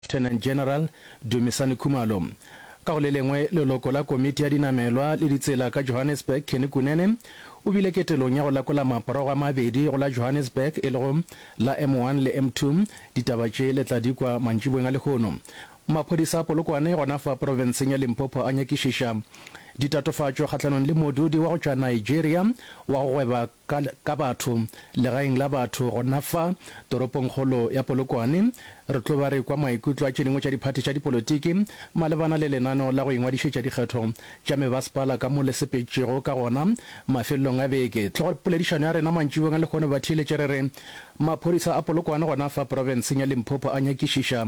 Lieutenant General Dumisani Khumalo. Ka go le lengwe, leloko la Komiti ya Dinamelwa le Ditsela ka Johannesburg, Kenny Kunene, o bile ketelong ya go lekola maporogo a mabedi go la Johannesburg e lego la M1 le M2. Ditaba tše le tla di kwa mantšiboeng a lehono. Maphodisa a Polokwane gona fa profenseng ya Limpopo a nyakišiša ditatofatšo kgahlanong le modudi wa go tšwa Nigeria wa go gweba Ka, ka batho, legaeng la batho, gona fa, toropongkgolo ya Polokwane, re tlo ba re kwa maikutlo a tše dingwe tša diphathi tša dipolotiki malebana le lenaneo la go ingwadišetša dikgetho tša mebasepala ka mo le sepetšego ka gona mafelelong a beke. Tlogo poledišano ya rena mantšibong a lehono ba theeletše re re, Maphodisa a Polokwane gona fa porofenseng ya Limpopo a nyakišiša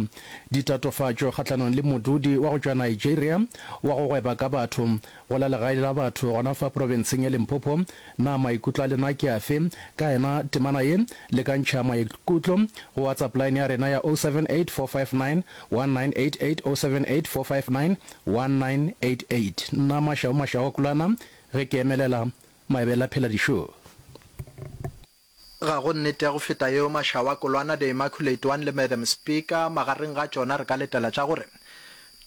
ditatofatšo kgahlanong le modudi wa go tšwa Nigeria wa go gweba ka batho, Go la legae la batho gona fa profenseng ya Limpopo, na maikutlo a lena ke afe ka yena? Temana ye, lekantšha maikutlo go WhatsApp line ya rena ya 0784591988, 0784591988. Nna Mashau Mashauakulana ge ke emelela Maebela Pheladišoo. Ga go nnete ya go feta yeo Mashawa, Kolwana, The Immaculate One le Madam Speaker magareng ga tšona re ka letela tša gore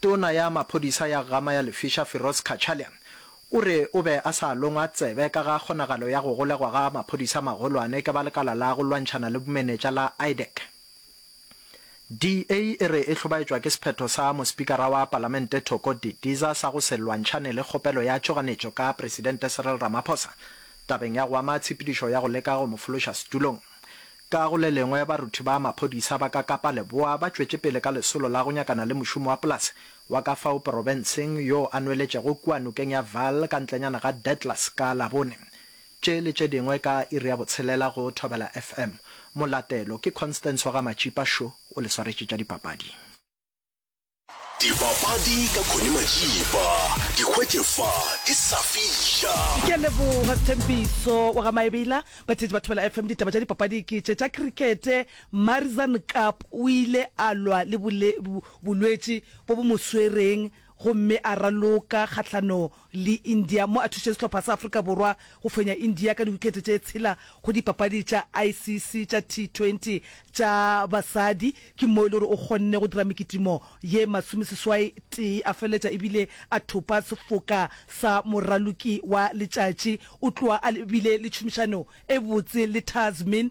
Tona ya Maphodisa ya Gama ya Lefiša Firoz Cachalia o re o be a sa longwa tsebe ka ga kgonagalo ya go golegwa ga maphodisa magolwane ke ba lekala la go lwantšhana le bomenetša la IDEC. DA e re e hlobaetšwa ke sephetho sa Mospikara wa Palamente Thoko Didiza sa go se lwantšhane le kgopelo ya tšhoganetšo ka Presidente Cyril Ramaphosa tabeng ya go ama tshepedišo ya go leka go mo fološa setulong. Ka go le lengwe, baruthi ba maphodisa ba ka Kapa Leboa ba tšwetše pele ka lesolo la go nyakana le mošomi wa polase wa ka fao porobenseng yo a nweletšego kua nokeng ya Vaal ka ntlenyana ga Detlhus ka Labone. Tše le tše dingwe ka iri ya botshelela go Thobela FM. Molatelo ke Constance wa ga Matšipa Šo o le swaretše tša dipapadi. Dipapadi ka Connie Matšipa. Di hwetše fa di sa fihla. Ke a leboga Sthembiso wa ga Maebela. Batheetši ba Thobela FM, ditaba tša dipapadi ke tše tša krikete. Marizanne Kapp o ile a lwa le bolwetši bo bo mo swereng gomme a raloka kgahlano le India mo a thušitše sehlopha sa Afrika Borwa go fenya India ka diwikete tše tshela go dipapadi tša ICC tša T20 tša basadi. Ke mo e le gore o kgonne go dira mekitimo ye masomeseswai tee a feletša e bile a thopa sefoka sa moraloki wa letšatši. O tloga a bile le tšhomišano e botse le Tazmin.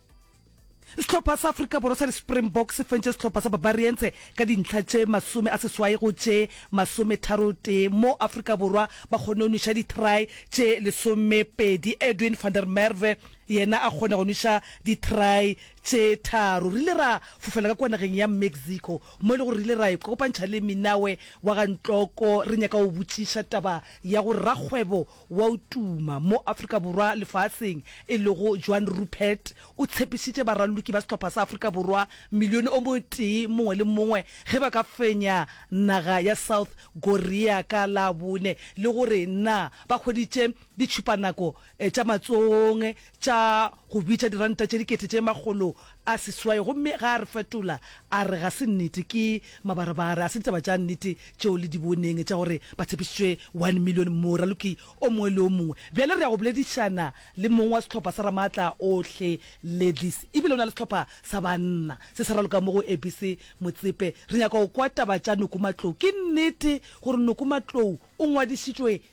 Sehlopha sa Afrika Borwa sa di-Springboks se fentše sehlopha sa Barbarians ka dintlha tše masome a seswai go tše masometharotee mo Afrika Borwa ba kgonne go nweša di-try tše lesomepedi. Edwin van der Merwe yena a kgone go nweša di-try tše tharo. Re ile ra fofela ka kua nageng ya Mexico mo e le gore re ile ra ikopantšha le Minawe wa ga Ntloko re nyaka go botšiša taba ya gore rakgwebo wa o tuma mo Afrika Borwa lefaatseng e lego Joan Rupert o tshepišitše baraloki ba sehlopha sa Afrika Borwa milione o motee mongwe le mongwe ge ba ka fenya naga ya South Korea ka Labone le gore na ba hweditše ditšhupanako tša matsohong tša go bitša diranta tše dikete tše makgolo a seswai gomme ge a re fetola a re ga se nnete, ke mabarebare, a se ditaba tša nnete tšeo le di boneng tša gore ba tshepišitšwe one million moraloki o mongwe le o mongwe. Bjale re ya go boledišana le mong wa sehlopha sa Ramaatla Ohle Ladies e bile o na le sehlopha sa banna se sa raloka mo go ABC Motsepe. Re nyaka go kwa taba tša Noku Matlou. Ke nnete gore Noku Matlou o ngwadišitšwe